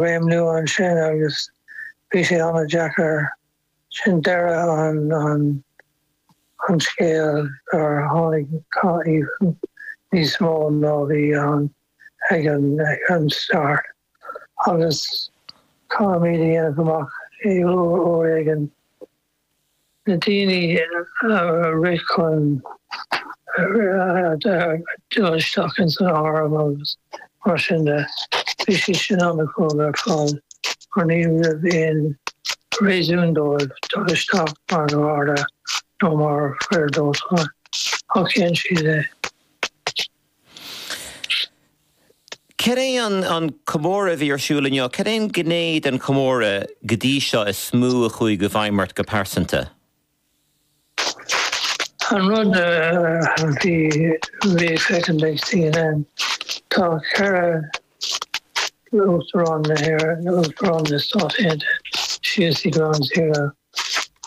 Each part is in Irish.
réimniú ansin agus bhí sé an-deacair. Sin deireadh an scéil agus gur tháinig cath níos mó ná bhí ann ag an start agus caithfimid a dhéanamh amach uair éigin na daoine a rith chun dul isteach ins an Arm agus mar sin de, bhí siad sin an-chróga ar fad mar ní raibh aon réasún dóibh dul isteach mar gharda nó mar fhir dóiteáin ach dhein siad é. Cad é an comóradh a bhí ar siúl inniu? Cén ghné den chomóradh go dtí seo is mó a chuaigh i bhfeidhm ort go pearsanta? An rud a bhí le feiscint ag CNN, tá ceithre Uachtarán na hÉireann, Uachtarán na Stát Aontaithe síos i Ground Zero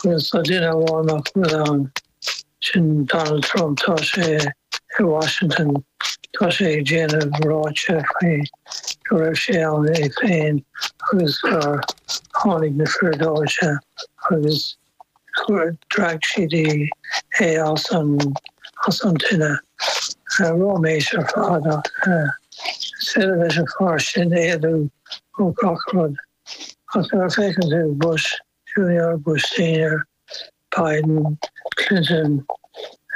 agus tá duine amháin nach bhfuil ann. Sin Donald Trump, tá sé i Washington, tá sé ag déanamh ráitis faoi go raibh sé ann é féin agus gur tháinig na fir dóiteáin agus gur tharraing siad é as an tine. Ráiméis ar fad ach is féidir leis an fear sin éalú ó gach rud. Ach nuair a feiceann tú Bush, Junior Bush-Senior, Biden, Clinton,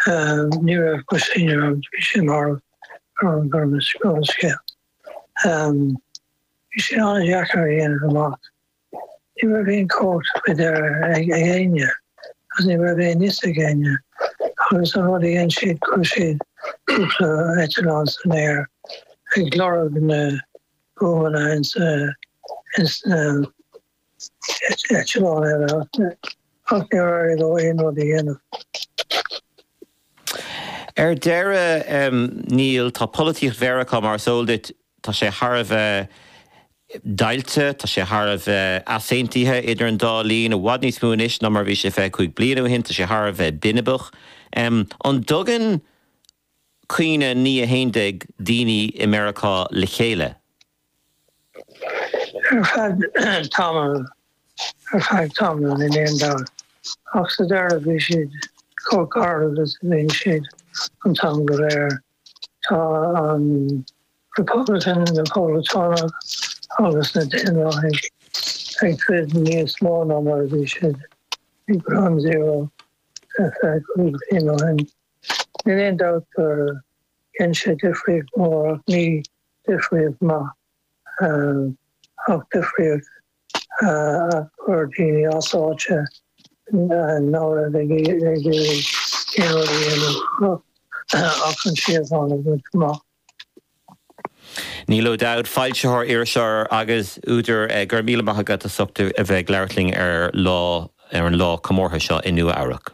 ní raibh Bush-Senior ann, bhí sé marbh, Herman Burns, Herman Scale. Bhí sé an-deacair a dhéanamh amach. Ní raibh aon chóip faoi dheireadh ag éinne agus ní raibh aon fhios ag éinne agus an rud a dhein siad chuir siad cúpla eitleán san aer ag lorg na bhuamanna ins na eitleán eile ach ach níor éirigh leo aon rud a dhéanamh. Ar deireadh, em, níl, tá polaitíocht Mheiriceá, mar is eol duit, tá sé thar a bheith deighilte, tá sé thar a bheith easaontaithe idir an dá thaobh, i bhfad níos mó anois ná mar a bhí sé 25 bliana ó shin, tá sé thar a bheith binibeach. Em, an dtugann cuimhne 9 11 daoine i Meiriceá le chéile? Ar feadh tamaill, ar feadh tamaill níl aon dabht, ach sa deireadh bhí siad chomh garbh is a bhíonn siad an t-am go léir. Tá an Republican, na Poblachtánaigh agus na Daonlathaigh ag troid níos mó ná mar a bhí siad ag Ground Zero ar feadh cúig bhliain ó shin. Níl aon dabht gur dhein sé difríocht mór ach ní difríocht maith ach difríocht a chuir daoine as áite ná raibh ag iarraidh aon rud a dhéanamh ach an síocháin a bhaint amach. Neil O'Dowd, foilsitheoir, iriseoir agus údar, go raibh míle maith agat as ucht a bheith ag labhairt linn ar an lá comórtha seo i Nua-Eabhrac.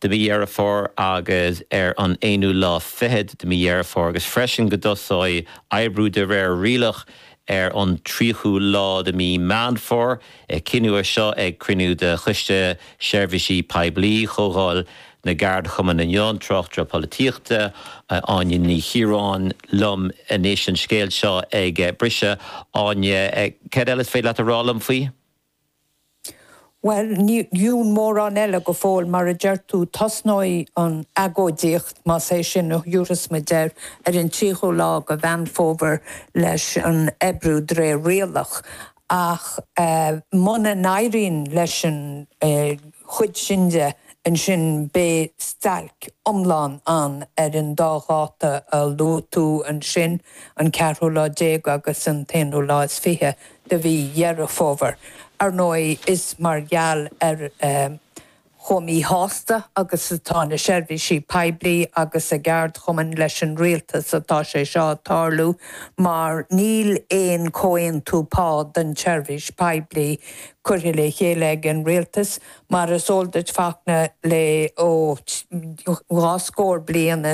de mhí Dheireadh Fómhair agus ar an aonú lá fichead de mhí Dheireadh Fómhair, agus freisin go dtosóidh oibriú de réir rialach ar an tríochú lá de mhí Meán Fómhair. Cinneadh é seo ag cruinniú de Choiste Seirbhísí Poiblí Chomhdháil na gCeardchumann inniu. An tráchtaire polaitíochta Áine Ní Chiaráin liom anois, an scéal seo ag briseadh. Áine, céard eile is féidir leat a rá liom faoi? Bhuel, níl mórán eile go fóill, mar a deir tú, tosnóidh an agóidíocht, más é sin a thabharfas muid air, ar an tríochú lá de Mheán Fómhair leis an oibriú de réir rialach. Ach muna n-éiríonn leis an chuid sin, ansin beidh stailc iomlán ann ar an dá dháta a luaigh tú ansin, an ceathrú lá déag agus an t-aonú lá is fiche. de mhí Dheireadh Fómhair. Ar ndóigh, is mar gheall ar chomh míshásta agus atá na seirbhísí poiblí agus a gceardchumainn leis an rialtas atá sé seo ag tarlú mar níl aon chomhaontú pá don tseirbhís poiblí curtha le chéile ag an rialtas. Mar is eol duit, Fachtna, le dhá scór bliain,